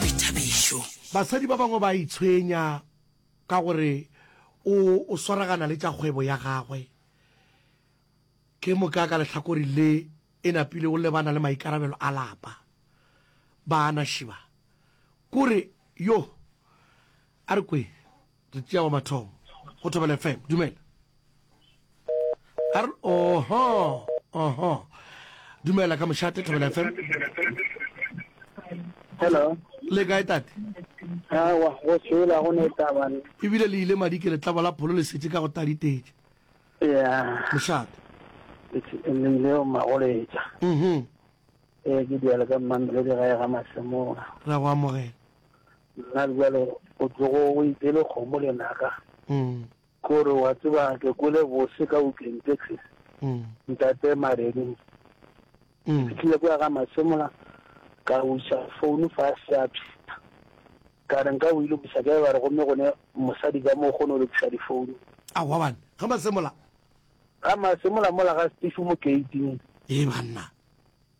boithabišo. Basadi ba bangwe ba a itshwenya ka gore o o swaragana le tša kgwebo ya gagwe. Ke moka ka lehlakori le e napile o lebana le maikarabelo a lapa. Baana Shiba, kore, Yoh! A re kweng, Re tšea wa mathomo go Thobela FM. Dumela. Ar oho. Oho. Dumela ka mošate Thobela FM. Hello. Le kae tate? Awa, go tshela go ne taba. Ebile le ile madi ke letlabo la pholo le setse ka go taditetse. Yeah. Mošate. Le ile o magoletsa. Mhm. Eh ke diela ka mmamele di ga ya ga masemora. Ra go amogela. Nna bjalo o tlogo o itele kgomo lenaka, ke gore wa tseba ke kwele bose ka weekend taxi, ntate Mareding. Ke fihlile kwa ga Masemola ka buša founu fa a se a phela. Ka re nka o ile buša ke ba re gomme gone mosadi ka mo kgone o lokisa difounu. A wa bana ga Masemola. Ga Masemola mola ga Steve mo gate-ing. Ee banna.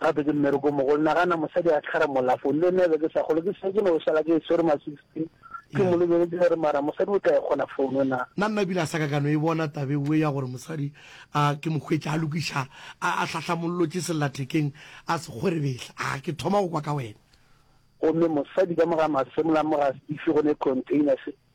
Gape ke mmereko mogolo. Nagana mosadi a tlhara molafo. Le nna be ke sa kgolwe. Ke setse ke no šala ke e swere ma 16. Ke mo lebeletše ka re, Mara mosadi o tla e kgona founo na? Na nna ebile a sa ka ka no e bona taba ewe ya gore mosadi a ke mo hwetše a lokiša, a, a hlahlamollotše sellathekeng, a se kgwerebehla? A ke thoma go kwa ka wena. Gomme mosadi ka mo ga masemola, mo ga Steve, go ne container se.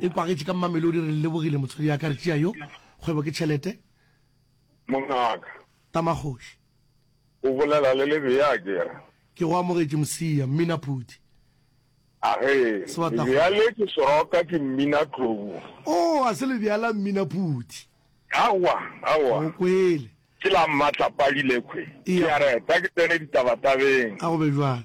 e kwagetše ka mmamelodi re lebogile motswadi ya ka re tšea yo kgwebo ke tšhelete mongaka tamagoši o bolela le lebe ya kere ke go amogetše mosia mmina phuti age lebjale ke soroka ke mmina tlobu o oh, a se lebjala mmina phuti awa awa o kwele ke la mmatla padile kwe ke a reta ke tsene ditabatabeng a go be jwale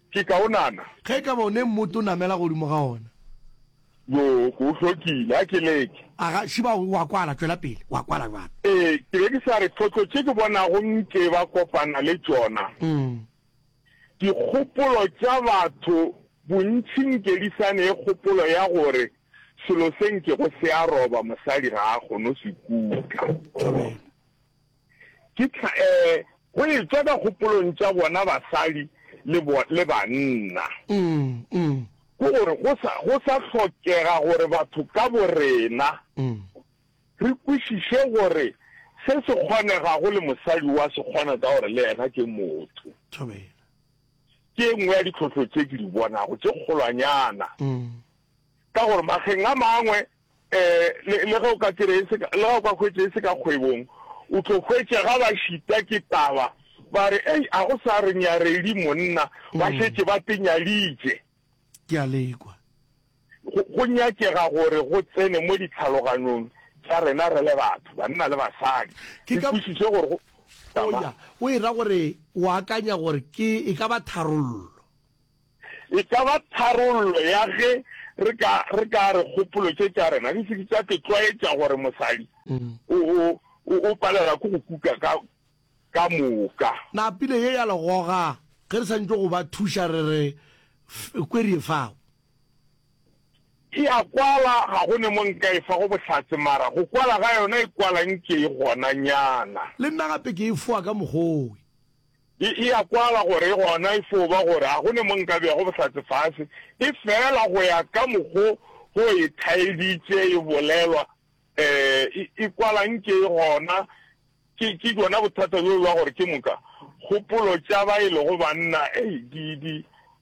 Ke kaonana. Ge e ka ba o ne mmoto o namela godimo ga ona. Yoo, ke o hlokile. A ke leke. A ga, šiba o a kwala, tšwela pele. O a kwala bjalo. Ee, ke be ke sa re tlhotlo tše ke bonago nke ba kopana le tšona, dikgopolo tša batho bontši nke di sa ne kgopolo ya gore selo se nkego se a roba mosadi ga a kgone go se kutla. Amene. Ke tla go e tšwa ka kgopolong tša bona basadi le banna. Ke gore go sa hlokega gore batho ka borena re kwešiše gore se se kgonegago le mosadi wa se kgona ka gore le yena ke motho. Ke e nngwe ya ditlhohlo tše ke di bonago tše kgolwanyana ka gore mageng a mangwe Le ge o ka tseba e se ka, le ge o ka hwetša e se ka kgwebong, o tlo hwetša ga ba šita ke taba ba re, Ei, a go sa re nyaredi monna, ba šetše ba te nyaditše. Ke a le kwa. Go, go nyakega gore go tsene mo ditlhaloganong tša rena re le batho, banna le basadi, Ke re ka, kwešiše gore go, o tama. ya, o e ra gore o akanya gore ke, e ka ba tharollo. E ka ba tharollo ya ge re ka re ka re kgopolo tše tša rena di se ke tša tlo tlwaetša gore mosadi o o o palela ke go kuka ka ka moka. Na pina ye ya legoga ge re santšwe go ba thuša re re kwerie fao? E a kwala, ga go ne mo nka e fago bohlatse, mara go kwala ga yona e kwala nke e gonanyana. Le nna gape ke e foa ka mokgwa owe. E e a kwala gore gona e fo ba gore ga go ne mo nka bego bohlatse fase, e fela go ya ka mokgo go e thaeditše e bolelwa, ee, e, e kwala nke e gona. Ke, ke bjona bothata bjo bja gore ke moka kgopolo tša ba e lego banna, ei, di, di.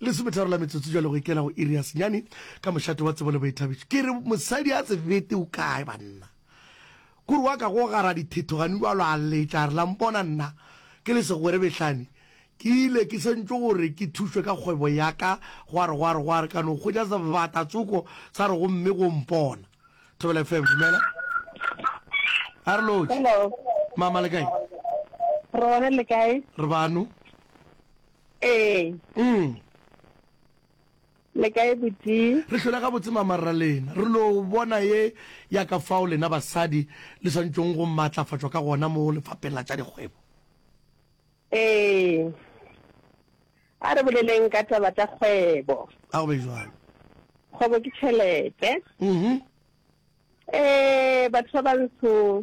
Lesometharo la metsotso jwale go ikela go iri ya senyane ka mošate wa tsebo le boithabišo. Ke re mosadi a se fete o kae banna? Kore wa ka go gara dithethogane wa lo a letša re la mpona nna ke le segwere behlane ke ile ke sentšwe gore ke thušwe ka kgwebo ya ka gwa re gwa re gwa re ka no hwetša sebata tsoko sa re gomme go mpona. Thobela FM dumela. A re lotše. Hello. Mama le kae? Re gona le kae? Re bano. Ee. Mm. Le kae boti? Re hlola ga botse mamarra lena. Re lo bona ye ya ka fao lena basadi le swantšong go matlafatšwa ka gona mo lefapeng la tša dikgwebo. Ee. A re boleleng ka taba tša kgwebo. A go be jwalo. Kgwebo ke tšhelete. Mhm. Ee, batho ba bantsho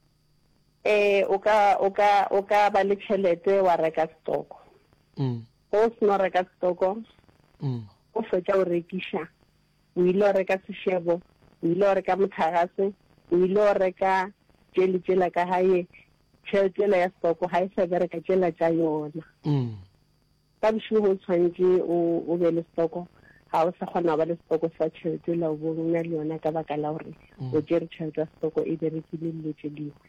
Ee, o ka, o ka, o ka ba le tšhelete wa reka setoko. Mm. Ge o seno reka setoko, mm. o fetša o rekiša, o ile o reka sešebo, o ile o reka mothagase, o ile o reka tše le tšela ka gae, tšheletela ya setoko ga e sa bereka tšela tša yona. Mm. Ka bošego o tshwanetše o, o be le setoko. Ga o sa kgona go ba le setoko sa tšhelete la o bo o na le yona ka baka la gore o tšere tšhelete ya setoko e berekile le dilo tše dingwe.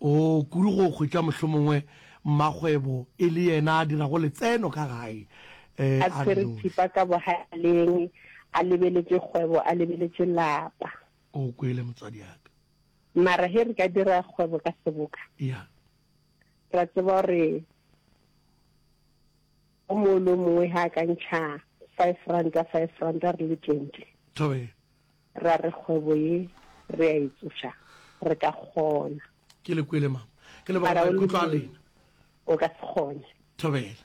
O kudu go hwetša mohlomongwe mmakgwebo e le yena a dirago letseno ka gae a a re tshwere noši. thipa ka bohaleng, a lebeletše kgwebo, a lebeletše lapa. O kwele, motswadiaka. Mara ge re ka dira kgwebo ka seboka. Ya. Re a tseba gore o mongwe le o mongwe ga a ka ntšha five ranta five ranta re le twenty Tobe. ra re kgwebo ye re a e tsoša re ka kgona ke le kwele mama ke lebaka Mara o maikutlo a lebile. lena o ka se kgone Thobela.